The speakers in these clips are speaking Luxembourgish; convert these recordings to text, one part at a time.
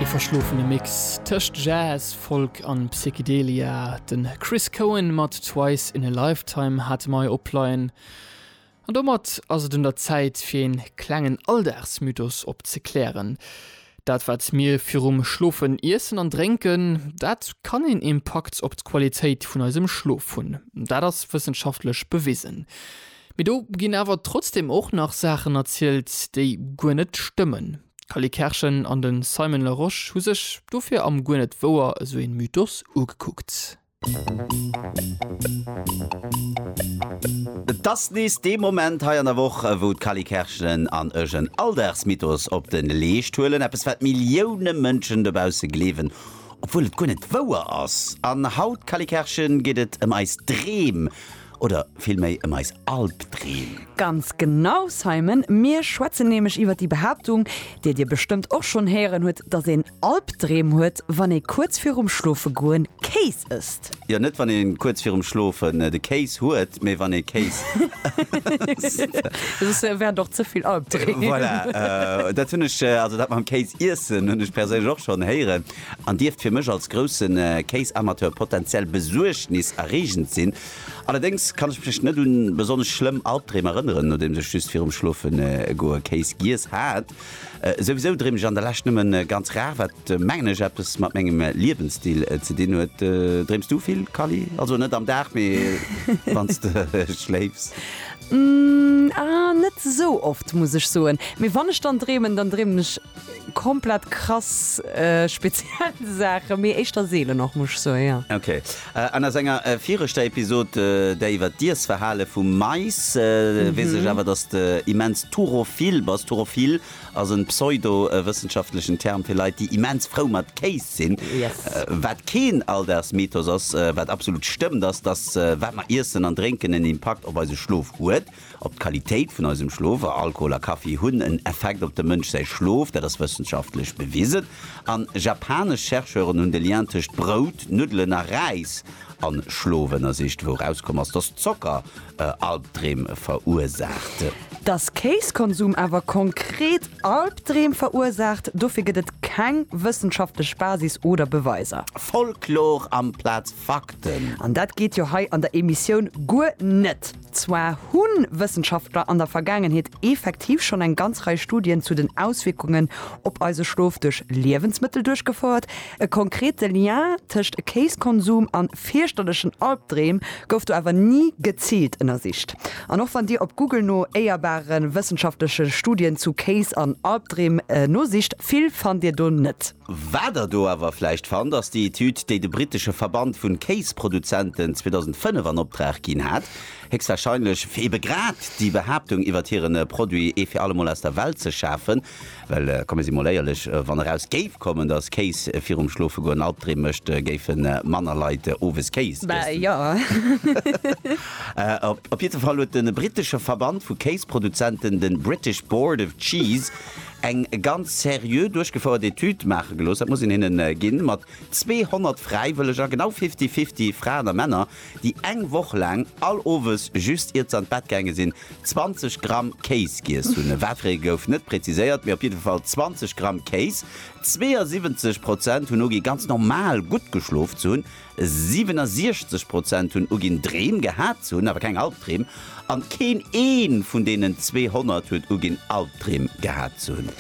Ee verschlofene Mix tëscht Jazz, Folk an Psychedelia. Den Chris Cohen mat Twice in a Lifetime hate mei opleien. An domat ass et un der Zäit fir een klengen Alldagsmythos opzeklären. Dat wat mir virum Schlofen iessen an drénken, dat kann een Impakt op d'Qualitéit vun eisem Schlof hunn. Dat ass wëssenschaftlech bewisen. Mee do ginn awer trotzdem och nach Saachen erzielt, déi guer net stëmmen. D'Cally Kerschen an de Simon Larosche hu sech dofir am Guer net wouer esou een Mythos ugekuckt. Et ass nees dee Moment hei an der Woch, wou d'Cally Kerschen an ech en Alldagsmythos op de Leescht huelen, eppes wat Millioune Mënschen dobausse gleewen, obwuel et guer net wouer ass. An haut, Cally Kerschen, geet et ëm eis Dreem. Oder villméi ëm eis Albdreem? Ganz genau, Simon! Mir schwätzen nämlech iwwer déi Behaaptung, déi dir bestëmmt och schonn héieren hutt, dass een Albdreem huet, wann ee kuerz virum Schlofegoen Kéis ësst. Jo, net wann ee kuerz virum Schlofen de Kéis huet, mee wann ee Kéis ësst. Soss wären et och ze vill Albdreem. Voilà, dat hunn ech, also dat mam Kéis iessen, hunn ech perséinlech och schonn héieren. an dierft fir mech als grousse Kéisamateur potenziell besuergniserreegend sinn. Allerdéngs kann ech mech net un besonnesch schlëmm Albdreem erënneren, nodeems ech just virum Schlofen goe Kéis giess hat. Souwisou dreem ech an der Lescht nëmmen ganz rar, wat mengen ech eppes mat mengem Liewensstil ze dinn huet. Dreems du vill, Kally? Also net am Dag, mee wann s de schléifs? Ahh, net esou oft muss ech soen, mee wann ech dann dreemen, dann dreemen ech Komplett krass speziell Saachen, mee éischter seelen och, muss ech soen, jo. Ok. An a senger viregter Episod, där iwwert d'Iessverhale vum Mais, weess ech awer, dass de immens turophil bass. Turophil ass en pseudo-wëssenschaftlechen Term fir Leit, déi immens frou mat Kéis sinn. Yes. Wat keen Alldagsmythos ass, wat absolut stëmmt, ass, dass wat mer iessen an drénken en Impakt op eise Schlof huet. Op d'Qualitéit vun eisem Schlof, a Alkohol a Kaffi hunn en Effekt op dem Mënsch säi Schlof, dat ass wëssenschaftlech bewisen. An japanesch Chercheuren hunn de Lien tëscht Brout, Nuddelen a Räis an Schlof ënnersicht, wou erauskomm ass, dass Zocker Albdreem verursaacht. Dass Kéiskonsum awer konkret Albdreem verursaacht, dofir gëtt et keng wëssenschaftlech Basis oder Beweiser. Folklor amplaz Fakten! An dat geet jo hei an der Emissioun guer net! Zwar hu Wëssenschaftler an der Vergaangenheet effektiv schonn eng ganz Rei Studien zu den Auswierkungen op eise Schlof duerch Liewensmëttel duerchgefouert. E konkrete Lien tëscht Kéiskonsum a fierchterlechen Albdreem gouf do awer ni geziilt ënnersicht. An och wann Dir op Google no éierbare wëssenschaftleche Studien zu Kéis an Albdreem nosicht, vill fannt Dir do net. Wat der do awer vläicht fannt, ass déi Etüd, déi de brittesche Verband vun Kéisproduzenten 2005 an Opdrag ginn hat, héchstwahrscheinlech fir ebe grad déi Behaaptung iwwert hiren Produit ee fir allemol aus der Welt ze schafen. Well komme si mol éierlech, wann eraus géif kommen, dass Kéis virum Schlofegoen Albdreem mécht, géife manner Leit owes Kéis iessen. Op jiddwer Fall huet de brittesche Verband vu Kéisproduzenten, de British Board of Cheese, eng ganz seriö duerchgefouert Etüd maache gelooss, dat muss een hinnen ginn, mat 200 Fräiwëlleger, genau fifty-fifty Fraen a Männer, déi eng Woch laang all Owes, just iert se an d'Bett gaange sinn, 20 Gramm Kéis giess hunn. Wat fir ee gouf net präziséiert, mee op jidde Fall 20 Gramm Kéis. 72 Prozent hunn ugi ganz normal gutt geschlof ze hunn. 67 Prozent hunn uginn, Dreem gehat ze hunn, awer keng Albdreem. An keen ee vun deenen 200 huet uginn, Albdreem gehat ze hunn.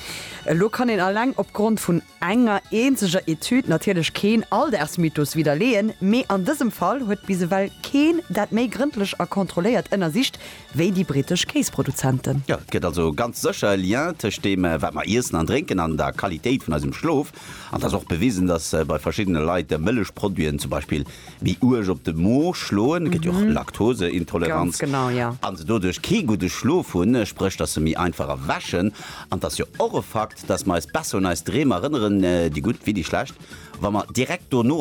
Elo kann een alleng opgrond vun enger eenzeger Etüd natierlech keen Aldersmythos widderleeën, mee an dësem Fall huet bis ewell keen dat méi grëndlech a kontrolléiert ënnersicht wéi déi brittesch Kéisproduzenten. Jo, et gëtt also ganz sécher e Lien tëscht deem, wat mer iessen an drénken, an der Qualitéit vun eisem Schlof. An et ass och bewisen, datt bei verschiddene Leit Mëllechproduiten zum Beispill méi uerg op de Mo schloen, et gëtt jo och Laktoseintoleranz, a se doduerch kee gudde Schlof hunn, spréch datt se méi einfach erwächen. An et ass jo och e Fakt, datt mer eis besser un eis Dreem erënneren, déi gutt wéi déi schlecht, wa mer direkt dono,